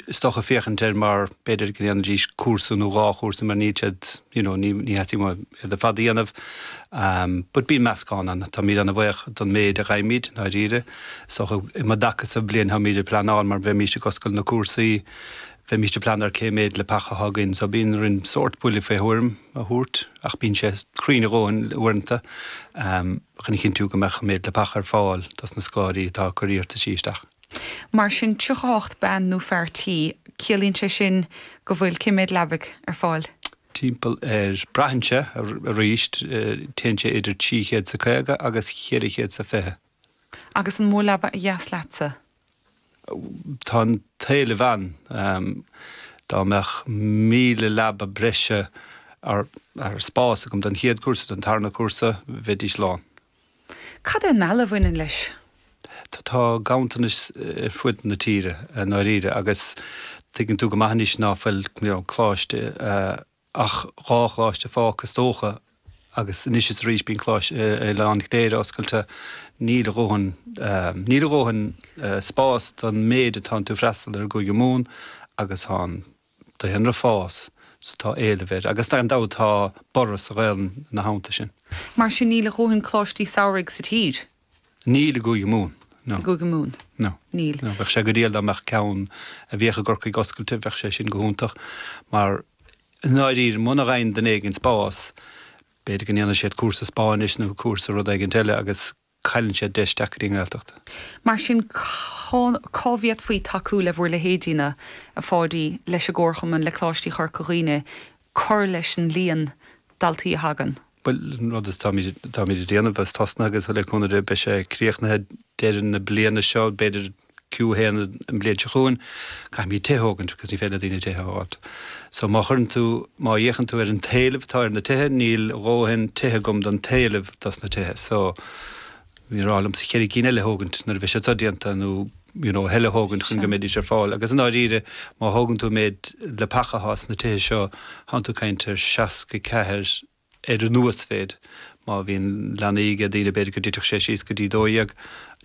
is dócha, féachaint ar mar, b'fhéidir, go ndéanfaidís cúrsa nó dhá chúrsa mar níl siad, you know, ní, ní theastaíonn uaim iad ar fad a dhéanamh. But bíonn meascán ann. Táimid ana bhuíoch don méid a gheibhimid, i ndáiríre. Is dócha, um an dtaca sa bhliain, táimid ag pleanáil mar bheimís ag oscailt na cúrsaí, bheimís ag pleanáil ar cé méid leapacha atá againn. So bíonn orainn sórt buille fé thuairim a thabhairt ach bíonn sé cruinn a dhóthain uaireanta chun a chinntiú go mbeadh an méid leapacha ar fáil dos na scoláirí atá ag cur iarrtaisí isteach. Mar sin 38 bean nó fear tí, ciallaíonn sé sin go bhfuil, cé mhéad leabaidh ar fáil? Timpeall ar, braitheann sé, arís, téann sé idir trí chéad is a caoga agus cheithre chéad is a fiche. Agus an mó leaba ba dheas leatsa? Tá an t-éileamh ann. Dá mbeadh míle leaba breise ar spás agam don chéad cúrsa, don tarna cúrsa, bheidís lán. Cad é an mealladh a bhaineann leis? Tá ganntanais ar fud na tíre i ndáiríre agus tuigeann tú go maith anois ná fuil coláiste, ach dhá choláiste fágtha is dócha agus anois is arís bíonn coláiste ar oileán Chléire oscailte, níl a dhóthain, níl a dhóthain spás don méid atá ann chun freastal ar i gCúige Mumhan agus tá an. daonra ag fás so tá éileamh air agus gan dabht tá borradh sa Ghaelainn ina theannta sin. Mar sin níl a dhóthain coláistí samhraidh sa tír. Níl i gCúige Mumhan, no. I gCúige Mumhan? No. Níl. No. Bheadh sé go diail dá mbeadh ceann a bhíodh i gCorcaigh oscailte, bheadh sé sin go hiontach mar i ndáiríre muna gheibheann duine éigin spás b'fhéidir go ndéanfaidh siad cúrsa Spáinnis nó cúrsa rud éigin eile agus. cailleann siad deis teacht ar an nGaeltacht. Mar sin, cén chaoi a bhféadfaí tacú le bhur leithéidíne, a Pháidí, leis an gcomharchumann, le Coláistí Chorca Dhuibhne, cur leis an líon daltaí a thagann? Bhuel, an rud is atáimid ag déanamh, agus tosnaithe agus le cúnamh Dé beidh sé críochnaithe deireadh na bliana seo, b'fhéidir. Q1 An bhliain seo chugainn caithfimid tithe a thógaint because ní féidir le daoine tithe a fháilt. So má chuireann tú, má fhéachann tú ar an t-éileamh atá ar na tithe, níl dhóthain tithe agam don t-éileamh dos na tithe. So b'fhearr liomsa cheithre cinn eile a thógaint nuair a bheidh siad seo déanta nó you know, a thuilleadh a thógaint chun go mbeidís ar fáil. Agus i ndáiríre má thógann tú an méid leapacha atá sna tithe seo, thánn tú ag caint ar 64, ar an uasmhéid. Má bhíonn leanaí ag daoine b'fhéidir go dtitfeadh sé síos go dtí 12,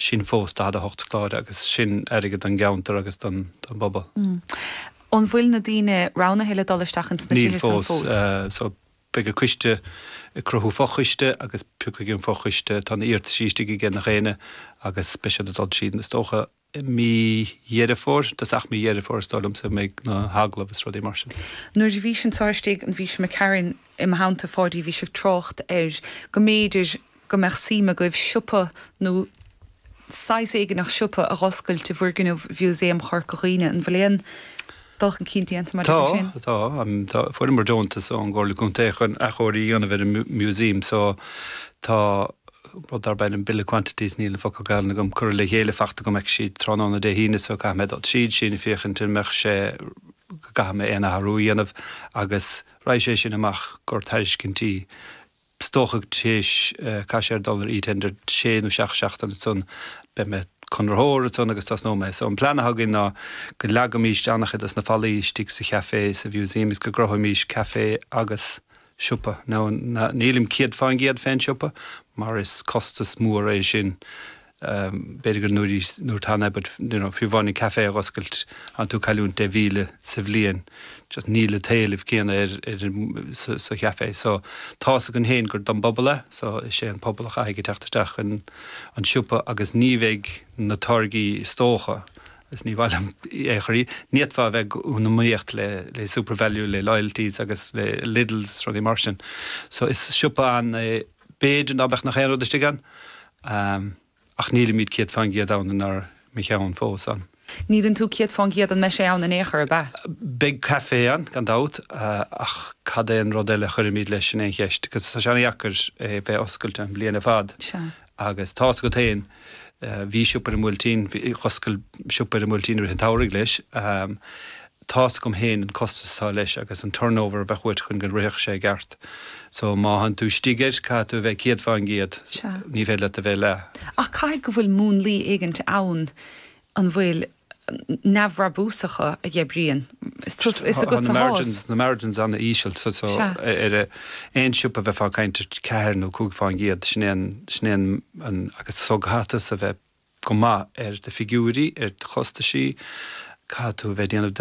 sin fós 48 scoláire agus sin airgead don gceantar agus don bpobal. An bhfuil na daoine roghnaithe le dul isteach ins na tithe san fós? Níl fós, so beidh an coiste ag cruthú fo-choiste agus piocfaidh an fo-choiste, tá na iarrataisí istigh againn cheana féin agus beidh siad ag dul tríd is dócha. i mí Dheireadh Fómhair, tá, ach mí Dheireadh Fómhair is dóigh liomsa a bheidh na hagallaimh is rudaí mar sin. Nuair a bhís anso istigh an bhfís i gcuimhin i mo theannta Pháidí a bhí sé ag trácht air go mb'fhéidir go mbeadh suim agaibh siopa nó saghas éigin siopa a dh'oscailt i bhfoirgneamh Mhúsaem Chorca Dhuibhne, an bhfuil aon. dul chun cinn déanta maidir Tá, leis sin? tá. Tá, fuaireamar deontas ón gComhairle Contae chun athchóiriú a dhéanamh ar an Músaem so tá rud darb ainm Bill of Quantities, níl an focal Gaelainn agam, curtha le chéile faighte agam acu tráthnóna Dé hAoine so caithfidh mé dul tríd sin féachaint an mbeadh sé, an gcaithfidh mé aon athrú a dhéanamh agus raghaidh sé sin amach go dtí tairiscintí. is dócha tar éis caithfidh sé dul ar e-tender sé nó seacht seachtaine ansan beidh conraitheoir ansan agus tosnóimid so an plean atá againn ná go leagaimís an-chuid dos na fallaí istigh sa chafé sa mhúsaem is go gcruthóimís café agus siopa now nílim céad fán gcéad fén siopa mar is costas mór é sin B'fhéidir gur nuair is nuair tan é but you know fiú amháin an café a dh'oscailt tánn tú ag cailliúint deich míle sa bhliain just níl an t-éileamh céanna ar ar an sa sa chafé so tá's agat féin gur don bpobal é so is é an pobal a chaithfidh a theacht isteach insan siopa agus ní bheidh na táirgí is dócha is ní maith liom é a chur ní fhéadfá a bheith in iomaíocht le le Supervalu le hAldis agus le Lidls rudaí mar sin so is siopa an é B'fhéidir ná beadh gach aon rud istigh ann, ach nílimid céad fán gcéad ann inár gceann fós, an. Níleann tú céad fán gcéad an mbeidh sé ann in aon chor, ab ea? Beidh caife ann, gan dabht, ach cad é an rud eile a chuirfimid leis, sin é an cheist, agus tá sé an-dheacair é bheith oscailte an bhliain ar fad. Agus tá's agat féin, bhí siopa ar an mBuailtín, dh'oscail siopa ar an mBuailtín i rith an tsamhraidh leis, Tá's agam fhéin an costas atá leis agus an turnover a bheadh uait chun go rithfeadh sé i gceart. So má tánn tú istigh air, caithfidh tú a bheith céad fán gcéad, Sea. ní féidir leat a bheith leath. Ach caithfidh go bhfuil múnlaí éigint ann, an bhfuil, neamhbhrabúsacha a gheibríonn, is tusa, is agatsa a sháith. Tá na margins an-íseal. So Sea. ar aon siopa a bheifeá ag caint ar ceathair nó cúig fán gcéad, sin é an, sin é an, an, agus so caithfidh tusa a bheith go maith ar d'fhigiúirí, ar do chostaisí, caithfidh tú a bheith ag déanamh do,